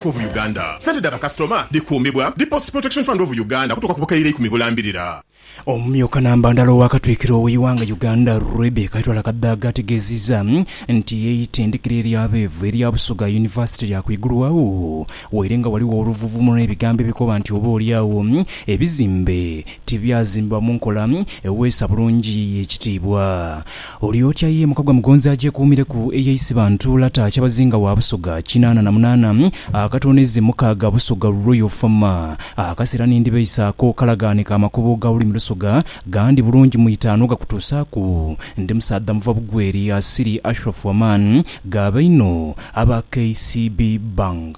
of Uganda. Sente dha bakasitoma dhikuumibwa dhi Post Protection Fund of Uganda okutuuka ku bukaire ikumi bulambirira. Omumyuka Nambandhala owa Katwikiro we Iwanga Uganda Rebecca Itwala Kadhaga ategeziza nti eitendekero erya beevu erya Busoga University lya kwigulwagho waire nga ghaligho oluvuvumulo ne bigambo ebikoba nti oba oli agho ebizimbe tibyazimbibwa munkola eweesa bulungi ekitiibwa Olyokya ye muka gwa Mugonzi agyekuumireku eye Isibantu Lata Kyabazinga wa Busoga kinaana na munaana akatooneze mukaaga Busoga Royal Fama. Akaseera ni ndibeisa ako kalagaane ka makubo ga lulimi Lusoga gandi bulungi mu itaanu gakutuusaaku ndi musaadha muva bugweri asiri Ashraf Aman Gaabainho aba KCB Bank.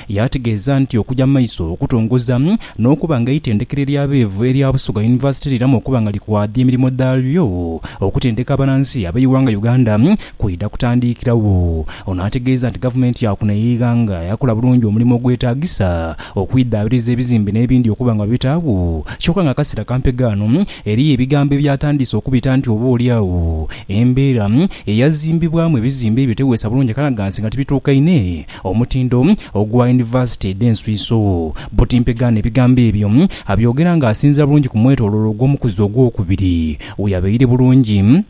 Yaategeeza nti okuja mu maiso okutongoza n'okuba nga eitendekero ery'abeevu erya Busoga University liramu okuba nga likwadhya emirimo dhalyo, okutendeka abanansi ab'eighanga Uganda kwidha kutandiikiragho. Ono ategeeza nti gavumenti ya kuno ey'eighanga yakola bulungi omulimo ogwetaagisa okwidhaabiriza ebizimbe n'ebindi okuba nga babitaagho kyoka nga akaseera kampe ghano eriyo ebigambo ebyatandiise okubita nti oba olyagho embeera eyazimbibwamu ebizimbe ebyo teweesa bulungi akanagansi nga tibituukaine Omutindo ogwa yunivasite edh'enswiso. Buti Mpegaano ebigambo ebyo abyogera ng'asinziira bulungi ku mwetoloolo ogw'omukuzi ogwokubiri we yabaire bulungi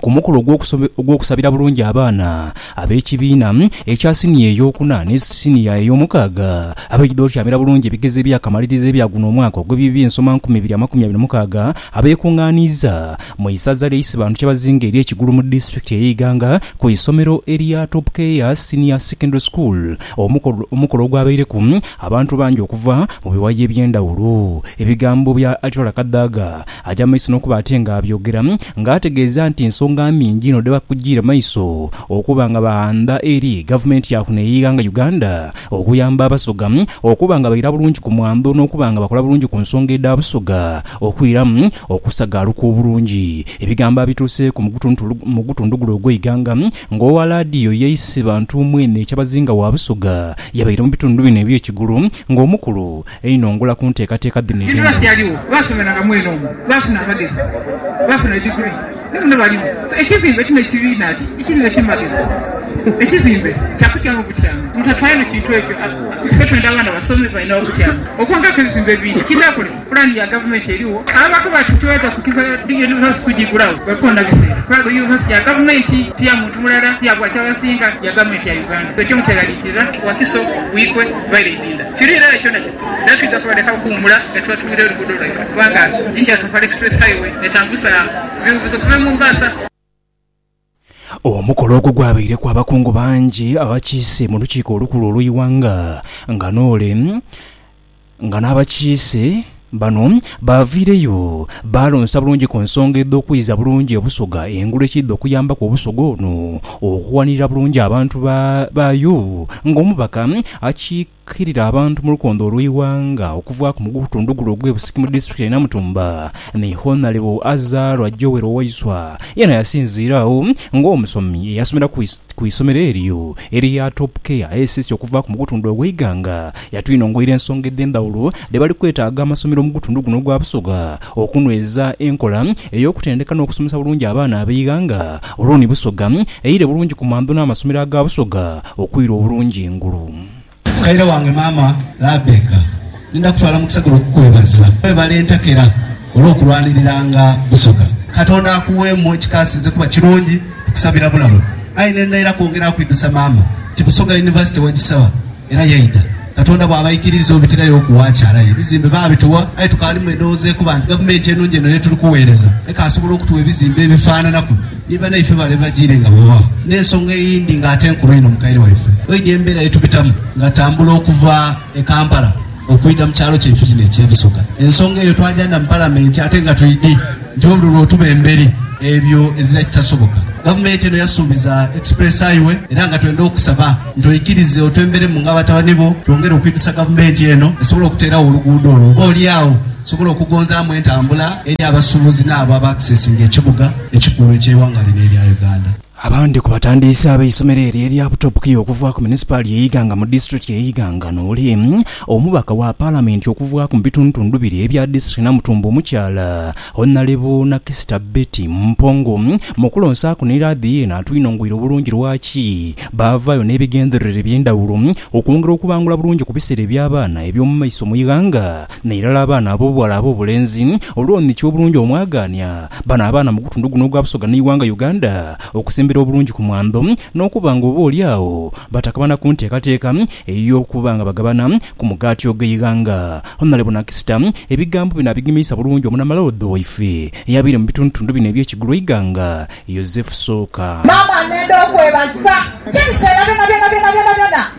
ku mukolo ogw'okusabira bulungi abaana ab'ekibiina ekya siniya eyookuna ni siniya eyoomukaaga abaidha otyamira bulungi ebigezo ebyakamaliriza ebya guno omwaka ogw'eby'eby'ensoma nkumi ibiri amakumi abiri mukaaga abeekungaaniiza Mu isaza lya Isibantu Kyabazinga erye Kigulu mu disitulikiti eye Iganga ku isomero erya Top Care Senior Secondary School omukolo omukolo ogwabaireku abantu bangi okuva mu biwayi ebyendhawulo. Ebigambo bya Atirola Kadhaga aja mu maiso nokuba ate nga abyogera nga ategeeza nti nsonga nhingi inho dhebakujiire maiso okuba nga baandha eri gavumenti yaku ne Iganga Uganda okuyamba abasoga okuba nga baira bulungi ku mwandho nokuba nga bakola bulungi ku nsonga edha busoga Okwiramu okusagaaluka obulungi, ebigambo abituuseeku mu gutundhugulu ogw'eighanga ng'owa laadiyo ye Isibantu mwene Kyabazinga wa Busoga yabaire mu bitundu bino eby'ekigulu ng'omukulu einho ngula ku nteekateeka dhino edh'endhaghulo. Pulani ya gavumenti erigho. Abaku bati tweta kukiza yunivasite kugigulagho bwekoona biseera kuba yunivasite ya gavumenti ti ya muntu mulala, ti ya gwa Kyabasinga, ya gavumenti ya Uganda. Ekyo mukyeraliikirira? Wakiso, Buikwe, Baire Idinda. Kiri irala kyona kiri era twidha kubaleka okuwumula nga tubatumira oluguudo lwaibwe kubanga Indian Topar Express Highway etambuza biwuubuzo okuva e Mombasa. Omukolo ogwo gwabaireku abakungu bangi abakiise mu Lukiiko Olukulu olw'eighanga nga n'ole nga n'abakiise bano baaviireyo baalonsa bulungi ku nsonga edh'okwiza bulungi Obusoga engulu ekiidha okuyambaku Obusoga ono okuwanirira bulungi abantu baayo ng'omubaka akiika Kiirira abantu mu lukondo olw'eighanga okuvaaku mu gutundhu gule ogw'e Busiki mu disitulikiti ye Namutumba ni Honalebo Azarwa Joel Waiswa yena yasinziira agho ng'omusomi eyasomera ku isomero eryo erya Top Care SS okuvaaku mu gutundhu ogw'eighanga. Yatwinongoira ensonga edh'endhawulo dhe bali kwetaaga amasomero mu gutundhu guno ogwa Busoga okunhweza enkola ey'okutendeka n'okusomesa bulungi abaana ab'eighanga olwo ni Busoga eire bulungi ku mandho n'amasomero aga Busoga okwira obulungi engulu. Mukaire wange maama Labeka, ni ndha kutwala mu kisagiro okukwebaza. Webale entakera olw'okulwaniriranga Busoga. Katonda akuweemu ekikaasize kuba kirungi. Tukusabira bulamu. Aye ne ndha era kwongera kwidhusa maama nti Busoga University wagisaba era yaidha. Katonda bw'abaikiriza obitirayo ku waakyala aye ebizimbe baabituwa. Aye tukaalimu endhoghoza ekoba nti Gavumenti enungi eno y'etuli kuweereza ekaasobola okutuwa ebizimbe ebifaananaku. Ni banaife bale bajiire nga bw'oba n'ensonga eyindi nga ate nkulu inho mukaire waife oidhi embeera ye tubitamu ng'atambula okuva e Kampala okwidha mu kyalo kyaife kino eky'e Busoga. Ensonga eyo twajanda mu Palamenti ate nga twidhi nti obululu otuba emberi ebyo ezira kitasoboka. Gavumenti eno yasuubiza Express Highway era nga twenda okusaba nti oikirize otwemberemu nga batabani bo twongere okwidhusa Gavumenti eno esobole okuteeragho oluguudo olwo oba oli agho tusobole okugonzaamu entambula eri abasuubuzi n'abo aba accesinga ekibuga. ekikulu eky'eighanga lino erya Uganda. Abandi ku batandiisi ab'eisomero eryo erya Butopuki okuva ku munisipaali ye Iganga mu disitulikiti ye Iganga nooli omubaka wa palamenti okuvaaku mu bitundutundu biri ebya disitulikiti Namutumba omukyala Honalebo Nakisita Betty Mpongo mukulonsaaku ni laadhi yeena atwinongweire obulungi lwaki baavaayo n'ebigendererwa eby'endhawulo okwongera okubangula bulungi ku biseera eby'abaana eby'omumaiso mu ighanga N'irala abaana ab'obughala ab'obulenzi, olw'omukyo obulungi omwagaania bano abaana mu gutundu guno ogwa Busoga n'eighanga Uganda okusembera obulungi ku mwandho n'okuba nga oba oli agho batakabana ku nteekateeka ey'okuba nga bagabana ku mugaati ogw'eighanga. Honalebo Nakisita ebigambo bino abigemiisa bulungi Omunamaloodho waife eyabaire mu bitundutundu bino eby'e Kigul'eighanga, Yozefu Sooka. Maama, nenda okwebaza. Ti biseera byona byona byona byona byona.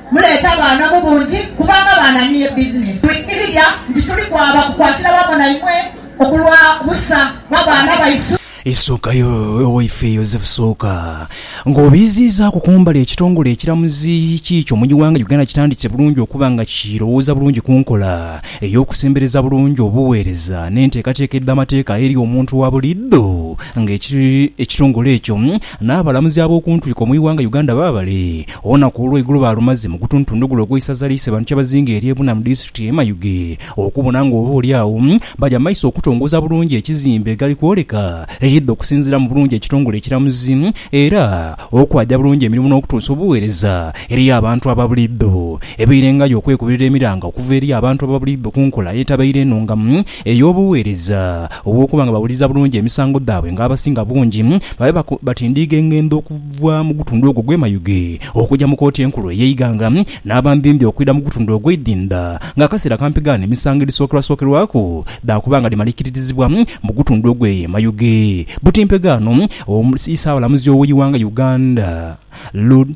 Muleete abaana mu bungi, kubanga abaana niye bizinensi. Twikiriria nti tuli kwaba kukwatira wamu na imwe okulwa busa bwa baana baisu. Isuuka yo Owaife Yozefu Sooka nga obiiziizaaku kumbali ekitongole ekiramuzi kiikyo mu iwanga Uganda kitandise bulungi okuba nga kirowooza bulungi ku nkola ey'okusembereza bulungi obuweereza n'enteekateeka edh'amateeka eri omuntu wa buliidho nga ekitongole ekyo n'abalamuzi ab'okuntwiko mu iwanga Uganda baabale Olunaku olw'eigulo baalumaze mu gutuntundugulo ogw'eisaza lyaise bantu kyabazinga erye Buna mu disitulikiti ye Mayuge okubona nga oba oli agho baja mu maiso okutongoza bulungi ekizimbe egali kwoleka ekidha okusinziira mu bulungi ekitongole ekiramuzi era okwaja bulungi emirimu n'okutuusa obugheereza eri abantu aba buliidho ebeirengayo okwekubirira emiranga okuva eri abantu aba buliidho ku nkola etabaire enungamu ey'obugheereza obw'okuba nga bawuliriza bulungi emisango dhaabwe ng'abasinga bungi babe batindiiga engendho okuva mu gutundu ogwo ogw'e Mayuge okuja mu Kooti Enkulu ey'eighanga n'abambimbi okwidha mu gutundu ogw'eidhinda ng'akaseera kampigaane emisango edhisookerwasookerwaku dhaakuba nga dhimalikiririzibwa mu gutundu ogw'e Mayuge butimpegaano. Isaabalamuzi ow'eighanga Uganda Lud.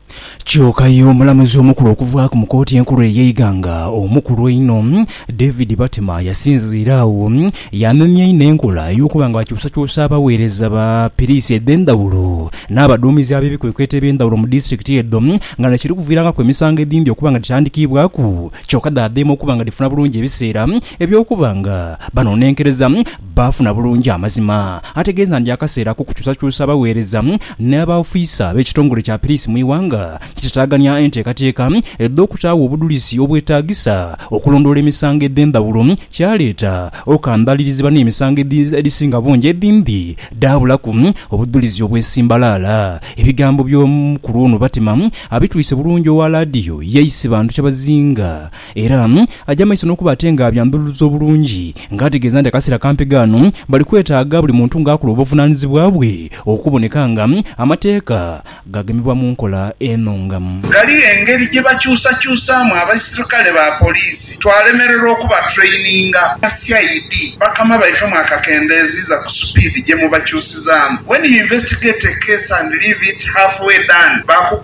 Kyoka aye omulamuzi omukulu okuvaaku mu kooti enkulu ey'eighanga omukulu einho, David Batema yasinziira agho yaamemya inho enkola ey'okuba nga bakyusakyusa abagheereza ba piriisi edh'endhawulo n'abaduumizi ab'ebikwekweto eby'endhawulo mu disitulikiti edho nga na kiri kuviirangaku emisango edhindhi okuba nga dhitandikiibwaku kyoka dhaadheema okuba nga dhifuna bulungi ebiseera eby'okuba nga banonenkereza baafuna bulungi amazima ategeeza nti akaseera ak'okukyusakyusa abagheereza n'abaofiisa b'ekitongole kya piriisi mu ighanga kitataagania enteekateeka edh'okutaagho obudhulizi obwetaagisa okulondoola emisango edh'endhawulo kyaleeta okambaalirizibwa n'emisango edhisinga bungi edhindi dhaabulaku obudhulizi obwesimbalaala. Ebigambo by'omukulu ono Batima abitwise bulungi owa laadiyo ye Isibantu Kyabazinga Era aja mu maiso n'okuba ate ng'abyandhululiza obulungi nga ategeeza nti akaseera kampi ghano bali kwetaaga buli muntu ng'akula obuvunaanyizibwa bwe okuboneka nga amateeka gagemebwa mu nkola eno nga Ghaligho engeri gye bakyusakyusaamu abaisirkale ba poliisi twalemererwa okubatraininga. Aba CID bakama baife mwakakendeeziiza ku supiidi gye mubakyusizaamu. When you investigate a case and leave it half way done, baku.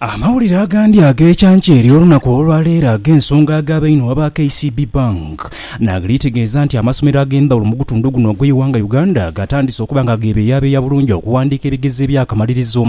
Amawulire agandi ag'ekyankya eri olunaku olwaleero ag'ensonga agaaba einhuma ba KCB Bank nagli tegeeza nti amasomero ag'endhawulo mu gutundu guno ogw'eighanga Uganda gatandise okuba nga gebeyabeeya bulungi okuwandiika ebigezo ebyakamalirizo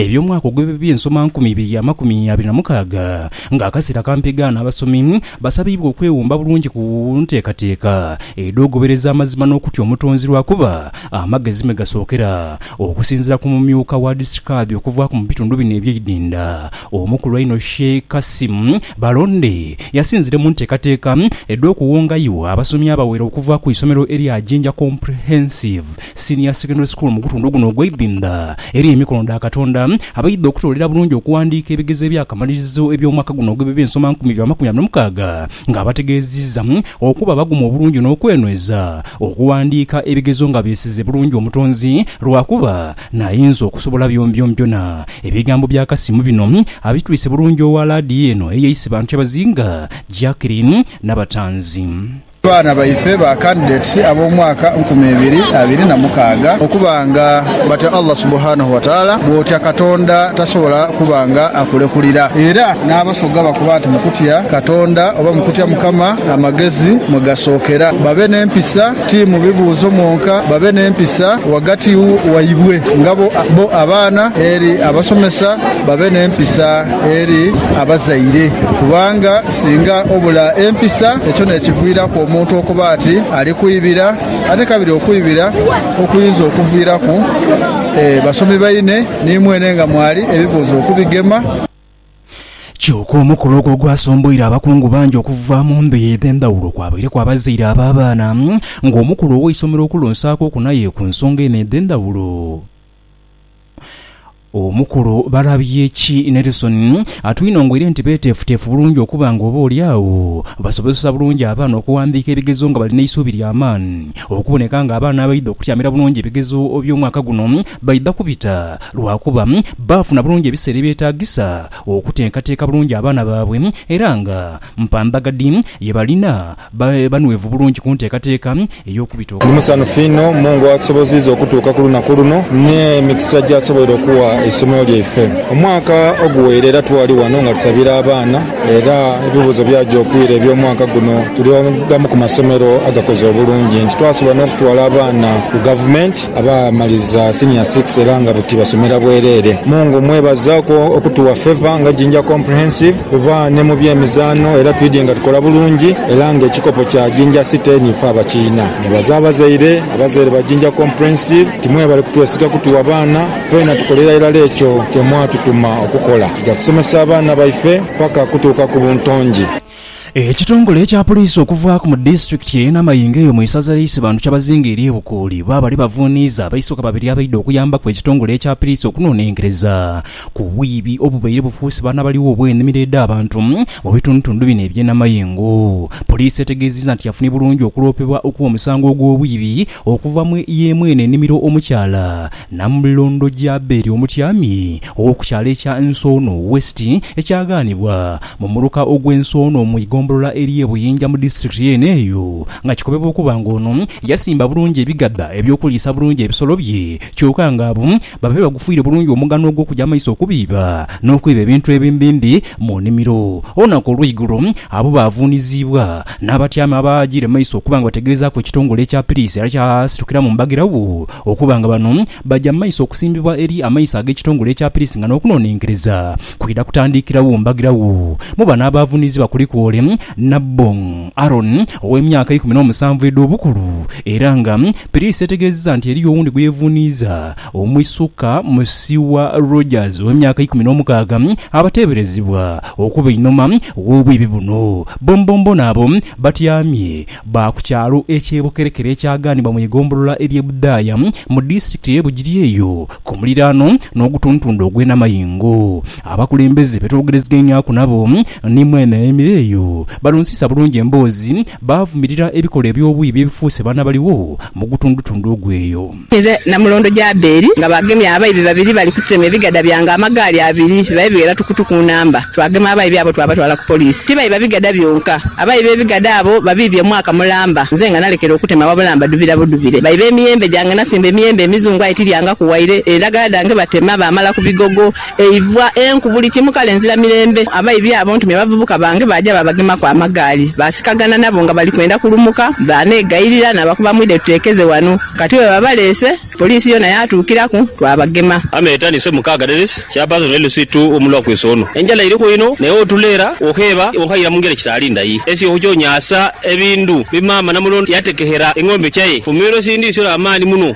eby'omwaka ogw'ebyensomankumi ibiri amakumi abiri na mukaaga nga akaseera kampigaano abasomi basabiibwa okwewumba bulungi ku nteekateeka edh'ogobereza amazima n'okutya omutonzi lwakuba Amagezi mwe gasookera okusinziira ku mumyuka wa District Kadhi okuvaaku mu bitundu bino eby'eidinda omukulu einho Sheikh Kassim Balonde yasinzire mu nteekateeka edh'okuwongayo abasomi abawera okuva ku isomero erya Jinja Comprehensive Senior Secondary School mugutundu guno ogw'eidinda eri emikono dha Katonda abaidha okutoolera bulungi okuwandiika ebigezo eby'akamalirizo eby'omwaka guno ogw'ebibensomankumi bya makumi abiri mukaaga nga abategeeziza okuba abagumu obulungi n'okwenweza Okuwandiika ebigezo nga beesize bulungi Omutonzi lwakuba n'ayinza okusobola byombyombjona. Ebigambo bya Kasimu bino abitwise bulungi owa laadiyo eno eyeise bantu kyabazinga, Jacqueline Nabatanzi. Abaana baife ba Candidates ab'omwaka nkumi ibiri abiri na mukaaga okuba nga batya Allah Subhanahu Wataala, bw'otya Katonda tasobola kuba nga akulekulira era. Yesu ghabakoba nti, Mu kutya Katonda oba mu kutya Mukama amagezi mwe gasookera. Babe n'empisa, ti mu bibuuzo mwonka, babe n'empisa ghagati waibwe nga bo abaana eri abasomesa, babe n'empisa eri abazaire. Kubanga singa obula empisa, ekyo n'ekiviiraku omuntu okuba ati ali kwibira, ate kabiri okwibira okuyinza okuviiraku basomi baine ni mwene nga mwali ebibuuzo okubigema. Kyoka omukolo ogwo gwasomboire abakungu bangi okuva mu ndhuyi edh'endhawulo kwabaireku abazaire ab'abaana nga omukulu ow'eisomero okulonsaaku okunaye ku nsonga eno edh'endhawulo. Omukulu Balabyeki Nelson atwinongoire nti beeteefuteefu bulungi okuba nga oba oli agho basobozesa bulungi abaana okuwandiika ebigezo nga bali n'eisuubi lya maani okuboneka nga abaana abaidha okutyamira bulungi ebigezo by'omwaka guno baidha kubita lwakuba baafuna bulungi ebiseera ebyetaagisa okuteekateeka bulungi abaana baabwe era nga mpamba ghadi ye balina babe banhwevu bulungi ku nteekateeka ey'okubita Ndi okwabo. musanhufu inho Mungu atusoboziiza okutuuka ku lunaku luno n'emikisa gy'asoboire okugha eisomero lyaife. Omwaka oguweire era twali ghano nga tusabira abaana era ebibuuzo byaja okwira eby'omwaka guno tuli agamu ku masomero agakoze obulungi nti twasobola n'okutwala abaana ku gavumenti. Abaamaliza Senior Six era nga buti basomera bwereere. Mungu mmwebaza okutuwa favour nga Jinja Comprehensive kuba ni mu by'emizaano era twidhye nga tukola bulungi era nga ekikopo kya Jinja City ni ife abakiina. Nebaza abazaire, abazaire ba Jinja Comprehensive nti mwebale kutwesiga kutuwa baana. Twena tukolera irala ekyo kye mwatutuma okukola. Tuja kusomesa abaana baife paka kutuuka ku buntongi. Ekitongole ekya poliisi okuvaaku mu disitulikiti eye Namayingo eyo mu isaza lye Isibantu kyabazinga erye Bukuuli bwaba ni bavuniiza abaisoka babiri abaidha okuyambaku ekitongole ekya piliisi okunonenkereza ku bwiibi obubaire bufuuse baana baligho obwenimiro edha bantu mu bitundutundu bino ebye Namayingo Poliisi etegeziza nti yafunye bulungi okuloopebwa okwo musango ogwo bwiibi okuva mu yemwene enimiro omukyala Namulundu Jaberi omutyami ow'oku kyalo ekya Nsoono West ekyaghanibwa mu muluka ogw'e Nsoono mu igombolola ery'e Buyinja mu disitirikiti yeene eyo nga kikobebwa okuba nga ono yasimba bulungi ebigadha eby'okuliisa bulungi ebisolo bye kyoka nga abo babe bagufuire bulungi omugano ogw'okuja amaiso okubiiba n'okwiba ebintu ebimbimbi mu nimiro. Olunaku olw'eigulo abo baavuuniziibwa N'abatyaami abaajiire mu maiso okuba nga bategeezaaku ekitongole ekya piriisi era kyasitukira mu mbagirawo okuba nga bano baja mu maiso okusimbibwa eri amaiso ag'ekitongole ekya piriisi nga n'okunonenkereza kwidha kutandikirawo mbagirawo. Mu bano abaavunizibwa kuliku ole Nabbong Aaron ow'emyaka ikumi n'omusanvu edh'obukulu era nga piriisi etegeezeza nti eriyo owundi gwe yevuniiza Omwisuka Musiwa Rogers ow'emyaka eikumi n'omukaaga abateeberezebwa okuba einhuma w'obwibi buno bonbonbona abo batyamye ba ku kyalo eky'e Bukerekere ekyaganibwa mu igombolola ery'e Budhaaya mu disitulikiti ey'e Bugiri eyo ku muliraano n'ogutuntundu ogw'e Namayingo. Abakulembeze be twogerezeganyaku nabo ni mwene ayemeire eyo balonsiisa bulungi emboozi baavumirira ebikolwa eby'obwibi ebifuuse banabaligho mu gutundutundu ogw'eyo. Nze na mulondo Jaberi nga baagemye abaibi babiri bali kutema ebigada byange amagaali abiri bibabe bighera tukutuku nnamba. Twagema abaibi abo twabatwala ku poliisi. Tibaiba bigada byonka. Abaibi b'ebigada abo babiibye omwaka mulamba nze nga nalekera okutema wabula mbadhubira budhubire. Baiba emiyembe gyange nasimba emiyembe emizungu aye tilyangaku waire, endagala dhange batema baamala ku bigogo Eivwa, enku, buli kimu, kale nzira mirembe. Abaibi abo ntumye bavubuka bange, baaja baabagemaku amagaali. Baasikagana nabo nga bali kwenda kulumuka, baaneegayirira naabakuba mwidhe tuteekeze wano. Kati bwe babaleese, poliisi yoona yaatuukiraku, twabagema. Ame etandise mukaaga days chairperson LC ii omulwa kweese ono. Enjala iriku inho naye otuleera okheeba okhayira mungeri ekitaali ndai. Esye ohuchonyaasa ebindu bi maama Namulondo yatekehera eng'ombe chae, fumiiro sindisiira amaani muno.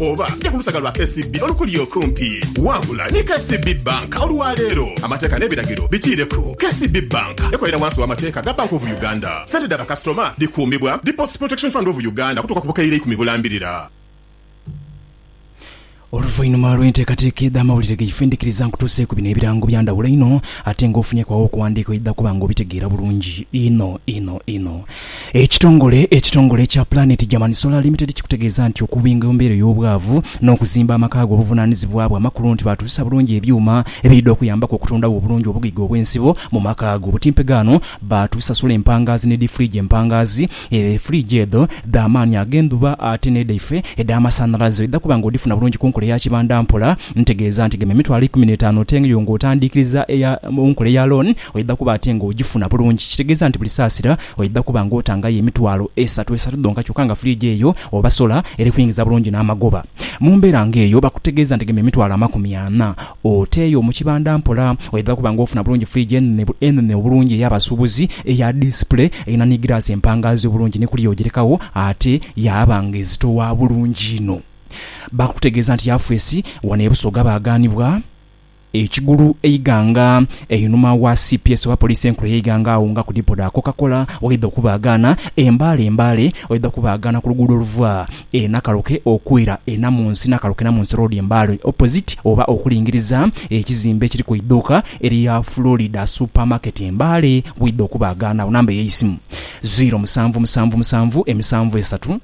Oba ja ku lusaga lwa KCB olukuli okumpi. Wangula ni KCB Bank olwa leero. Amateeka n'ebiragiro bikiireku. KCB Bank ekolera wansi w'amateeka ga Bank of Uganda. Sente dha bakasitoma dhikuumibwa Deposit Protection Fund of Uganda okutuuka ku bukaire ikumi bulambirira. Oluvainhuma lw'enteekateeka edh'amawulire ge Findikiriza nkutuuseeku bino ebirango bya ndhawulo inho ate nga ofunyeku agho okuwandiika oidha kuba nga obitegeera bulungi inho inho inho. Ekitongole ekitongole ekya Planet German Solar Limited kikutegeeza nti okubinga embeera ey'obwavu n'okuzimba amaka go buvunaanizibwa bwa makulu nti baatuusa bulungi ebyuma ebiidha okuyambaku okutundagho obulungi obugaiga obw'ensibo mu maka go. Butimpega ano baatuusa sola empangaazi ne difuriiji empangaazi, furiiji edho dha maani ag'endhuba ate n'edhaife edh'amasanhalaze oidha kuba nga odhifuna bulungi ku nkola eya kibanda mpola. Ntegeeza nti gema emitwalo eikumi n'etaanu otenge yo ng'otandiikiriza eya mu nkola eya loan oidha kuba ate ng'ogifuna bulungi. Kitegeeza nti buli saasira oidha kuba ng'otangayo emitwalo esatu esatu dhonka kyokka nga fridge eyo oba solar eri kuingiza bulungi n'amagoba. Mu mbeera ng'eyo bakutegeeza nti gema emitwalo amakumi ana oteeyo mu kibanda mpola oidha kuba ng'ofuna bulungi fridge enene enene obulungi ey'abasuubuzi eya display erina ni giraasi empangaazi obulungi ni kuliya ogirekagho ate yaaba ng'ezitowa bulungi inho. Baakutegeeza nti Yafesi wano e Busoga baaghanibwa e Kigulu e Iganga einhuma wa cps oba poliisi enkulu e Iganga agho nga ku dipo dha Coca-Cola waidha okubaaghaana e Mbale e Mbale waidha okubaaghaana ku luguudo oluva e Nakaloke okwira e Namunsi Nakaloke Namunsi Road e Mbale opposite oba okulingiriza ekizimbe ekiriku eidhuuka erya Florida Supermarket e Mbale waidha okubaaghaana agho. Namba eyeisimu, ziiro musanvu musanvu musanvu emisanvu esatu.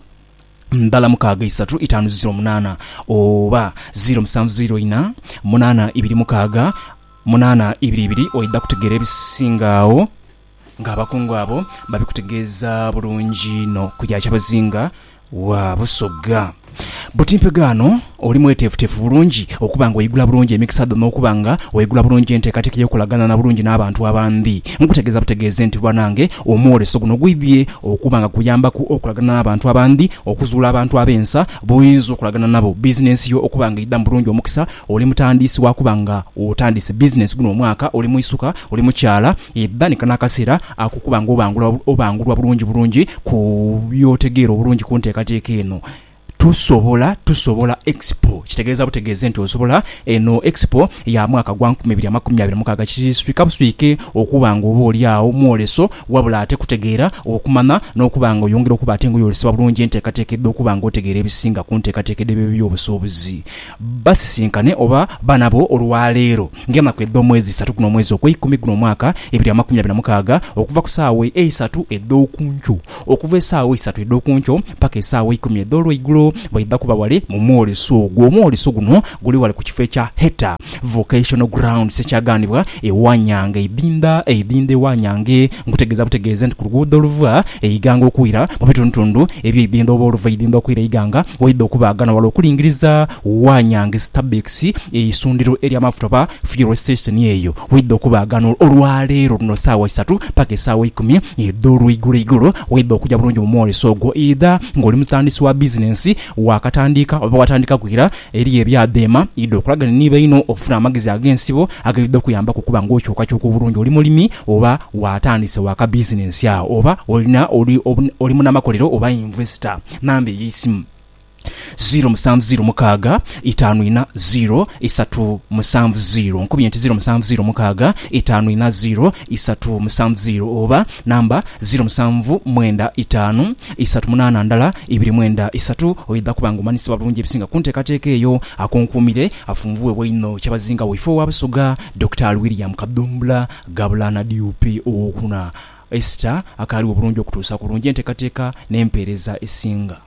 ndhala mukaaga isatu itaanu ziro munaana oba ziro musanvu ziro ina munaana ibiri mukaaga munaana ibiri ibiri oidha kutegeera ebisinga agho nga abakungu abo babikutegeeza bulungi inho ku ya Kyabazinga wa Busoga. Buti mpegaano. Oli mweteefuteefu bulungi okuba nga oigula bulungi emikisa dho n'okuba nga oigula bulungi enteekateeka ey'okukolagaanana bulungi n'abantu abandi? Nkutegeeza butegeezi nti banange omwoleso guno gwidhie okuba nga kukuyambaku okolagaanana n'abantu abandi, okuzuula abantu ab'ensa b'oyinza okolagaanana nabo, bizinensi yo okuba nga eidhamu bulungi omukisa, oli mutandiisi wa kuba nga otandiise bizinensi guno omwaka, oli mwisuka, oli mukyala, edhanika n'akaseera ak'okuba nga obangula obangulwa bulungi bulungi ku by'otegeera obulungi ku nteekateeka eno. Tusobola Tusobola Expo kitegeeza butegeeze nti osobola. Eno Expo ya mwaka gwa nkumi ibiri amakumi abiri na mukaaga kiswika buswike okuba nga oba oli agho mwoleso wabula ate kutegeera, okumanya n'okuba nga oyongera okuba ate nga oyolesebwa bulungi enteekateeka edha okuba nga otegeera ebisinga ku nteekateeka edh'ebyobusuubuzi. Basisinkane oba ba nabo olwaleero ng'enaku edh'omwezi isatu guno omwezi ogweikumi guno omwaka ibiri amakumi abiri na mukaaga okuva ku saawa eisatu edh'oku nkyo Okuva esaawa isatu edh'oku nkyo mpaka esaawa eikumi edh'olweigulo baidha kuba ghale mu mwoleso ogwo. Omwoleso guno guli ghale ku kifo ekya Heta Vocational Grounds ekyaghanibwa e Wanyange eidhindha eidhindha e Wanyange. Nkutegeeza butegeeze nti ku luguudo oluva e Iganga okwira mu bitundutundu eby'eidhindha oba oluva e Idhindha okwira e Iganga waidha okuba aghano ghale okulingiriza Wanyange Stabex ye isundhiro ery'amafuta oba fuel station eyo w'oidha okubaagana olwa leero luno saawa isatu paka esaawa ikumi edh'olweigulo igulo. Weidha okuja bulungi mu mwoleso ogwo idha ng'oli mutandisi wa bizinensi, waakatandiika oba watandikaku ira, eriyo ebya dheema idha okolagane ni baino ofune amagezi ag'ensibo agaidha okuyambaku okuba ng'okyukakyuka obulungi oli mulimi oba waatandise waakabizinensi agho oba olina oli munamakolero oba investor. Namba ey'eisimu. ziro musanvu ziro mukaaga itaanu ina ziro isatu musanvu ziro. Nkubye nti ziro musanvu ziro mukaaga itaanu ina ziro isatu musanvu ziro oba namba ziro musanvu mwenda itaanu isatu munaana ndala ibiri mwenda isatu. Oidha kuba nga omanyisibwa bulungi ebisinga ku nteekateeka eyo. Akunkuumire afunvuughebwa inho kyabazinga waife owa Busoga, Dokitaali William Kadhumbula Gabulana DUP ow'okuna, Esther akaaliwo bulungi okutuusa ku bulungi enteekateeka n'empeereza esinga.